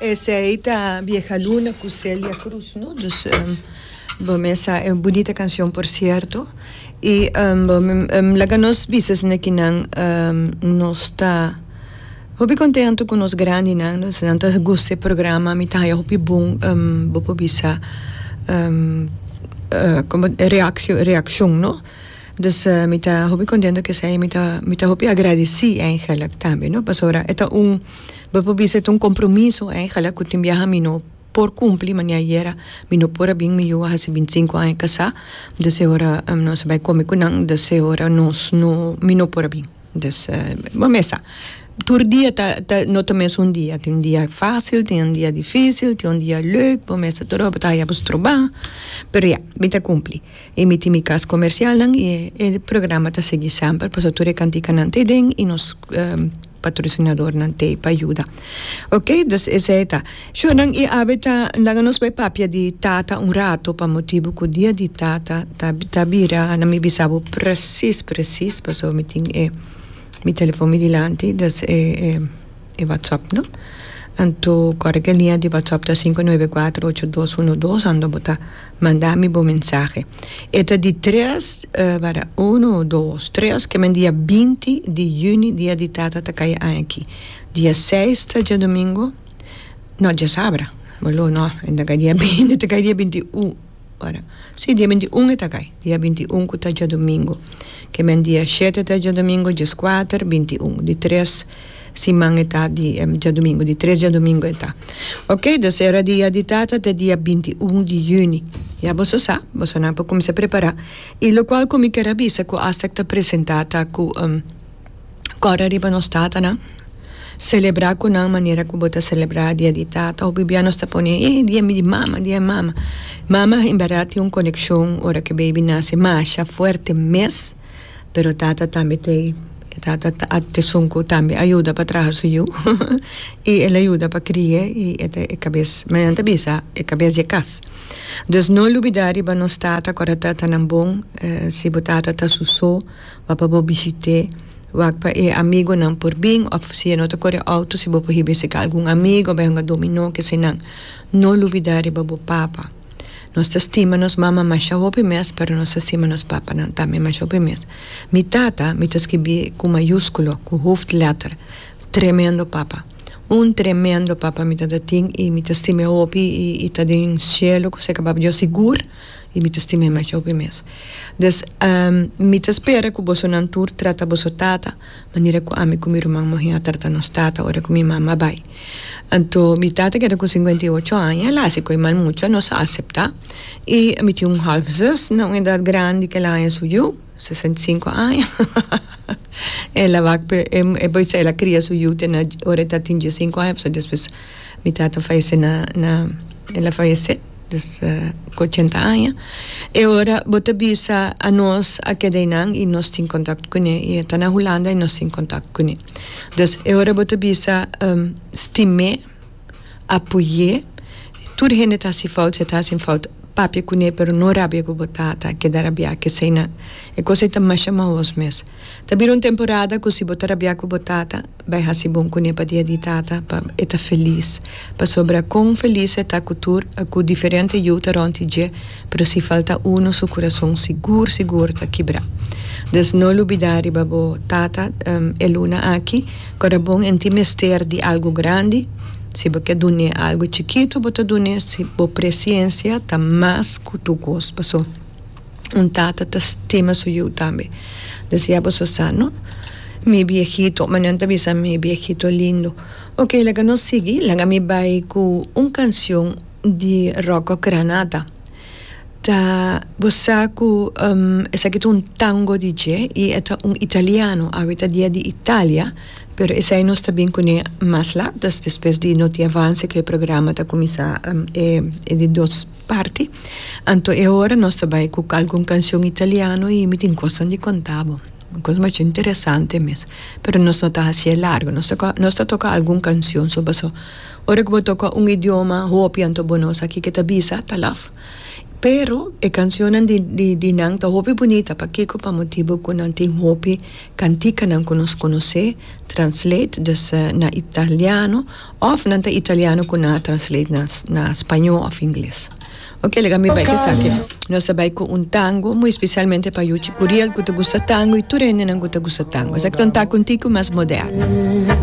Esey ta Vieja Luna cu Celia Cruz no dus bo mesa e bunita cancion por cierto y laga nos bisa esnan ki nan nos ta hopi contento cu nos grandi nan no esnan ta goza e programa mi ta haya hopi bon bo por bisa como reaccion no. Dus mi ta hopi contento cu esey, mi ta mi ta hopi agradeci eigenlijk tambe no pasobra e ta un bo por bisa e ta un compromiso eigenlijk cu tin biaha mi no por cumpli mane ayera mi no por a bin mi yu a haci binti cinco aña casa, dus e ora nos a bai come cu nan, dus e ora nos no mi no por a bin. Dus, bo mes sa, tur dia ta, ta, no ta mes un dia, tin dia facil, tin un dia dificil, tin un dia leuk, bo mes sa tur ora bo ta haya bo stroba, pero ya, mi ta cumpli, y mi tin mi cas comercialnan y e programa ta sigui semper pasobra tur e cantikanan ta eden y nos patrocinadornan ta ey pa yuda, ok, dus esey ta. Shornan i Abeta laga nos bai papia di Tata un rato pa motibu ku dia di Tata ta ta bira a mi bisa bo presis presis paso mi tin e mi telefon mi dilanti des e e watsòp no anto kòrda ku e liña di watsòp ta sinku nuebe kuater ocho dos uno dos ando bo ta manda mi bo mensahe e ta di tres wada uno dos tres kimen dia binti di yüni dia di Tata ta kaya aña aki dia seis ta diadomingo. No, diasabra. Bo lo no, e ta kai dia binti, ta kai dia binti un ora. Si, dia binti un e ta kai, dia binti un ku ta djadumingu. Ke men dia shete ta djadumingu, dieskuater, binti un. Di tres siman e ta di djadumingu, di tres djadumingu e ta. Oke, dus era dia di tata ta dia binti un di yüni. Ya boso sa, boso nan por kuminsá prepará. I lokual ku mi ker a bisa ku Astec ta presentá ta ku. Kòrda riba nos tatanan. Selebrá ku nan manera ku bo ta selebrá dia di tata. Hopi bia nos ta pone eh dia mi di mama, dia di mama. Mama en bèrdat tin un konekshon ora ku e beibi nase masha fuerte mes, pero tata tambe te ei. E tata a esun ku tambe a yuda pa traha su yu i el a yuda pa krie i e ta e kabes, me nan ta bisa, e kabes di e kas. Dus no lubidá riba nos tata, kòrda tatanan bon. Si bo tata ta su so. Bo pa bo bishit'é. Wak pa e amigonan por bin òf si e no ta kore outo si bo por hiba esei ka algun amigo bai hunga dominó ke eseinan. No lubidá riba bo papa. Nos ta stima nos mama masha hopi mes pero nos ta stima nos papanan tambe masha hopi mes. Mi tata, mi ta skibi ku mayúskulo, ku hooftletter, tremendo papa. Un tremendo papa mi tata tin i mi ta stim'é hopi i ta den shelu kusé ku papadios sigur. y mi ta stima e mehor pa mi mes. Des mi ta spera cu bosonan tur trata boso tata manera cu ami cu mi ruman muher a trata nos tata ora cu mi mama bay. Anto mi tata keda cu cincuenta y ocho aña, el a haci cu e mal mucha, nos a acepta y mi tin un half zuster na un edad grandi cu el a haña su yu, sesenta y cinco aña, hahaha, el a wak pa e bay sa el a cria su yu te na ora el ta tin diecicinco aña pasobra despues mi tata a fallece na, el a fallece. Desde cu ochenta aña. E ora bo ta bisa a nos a keda einan y nos tin contact cu ne y e ta na Hulanda y nos tin contact cu ne. Dus e ora bo ta bisa stim'é, apoy'é, tur hende ta haci fout, si e ta hacin fout papia cu ne pero no rabia cu bo tata, keda rabia kesey nan. E cos ei ta masha maos mes. Ta bira un temporada cu si bo ta rabia cu bo tata Bai hasi bon kuné pa dia di tata pa e ta felis. Pasobra kon felis e ta ku tur ku diferente yu ta rònt di dje, pero si falta unu su kurason sigur sigur ta kibrá. Des no lubidá riba bo tata e luna aki, ku a ta bon en tin mester di algu grandi. Si bo ke dun'é algu chikitu bo ta dun'é si bo presiensia ta mas ku tu kos. Paso. Un tata ta stima su yu tambe. Decia boso sa no? Mi biehito, ma nan ta bisa mi biehito lindo. Ok, laga nos sigui, laga mi bay cu un cancion di Rocco Granata. Ta, bo sa cu esaki ta un tango di dje y e ta un italiano, awe ta dia di Italia, pero esai nos ta bin cune mas lat, despues di no tin avance cu e programa ta cuminsa e di dos. parti, anto e ora nos ta bai cu algun cancion italiano y mi tin cosnan di conta bo, cos macho interesante mes, pero nos no ta haci'e largo, nos ta nos ta toca algun cancion so paso ora cu bo toca un idioma hopi anto bo no sa kico ta bisa talaf, pero e cancionnan di di di nan ta hopi bunita pakico pa motibo cu nan tin hopi canticanan cu nos conoce, translate, dus na italiano. Of nan ta italiano cu nan a translate na na spaño of ingles. Ok alega mi bay cu esaki. Nos ta bay cu un tango muy especialmente pa Yuchi Curiel cu ta gusta tango y tur hendenan cu ta gusta tango. Esaki ta un taco un tico mas moderno.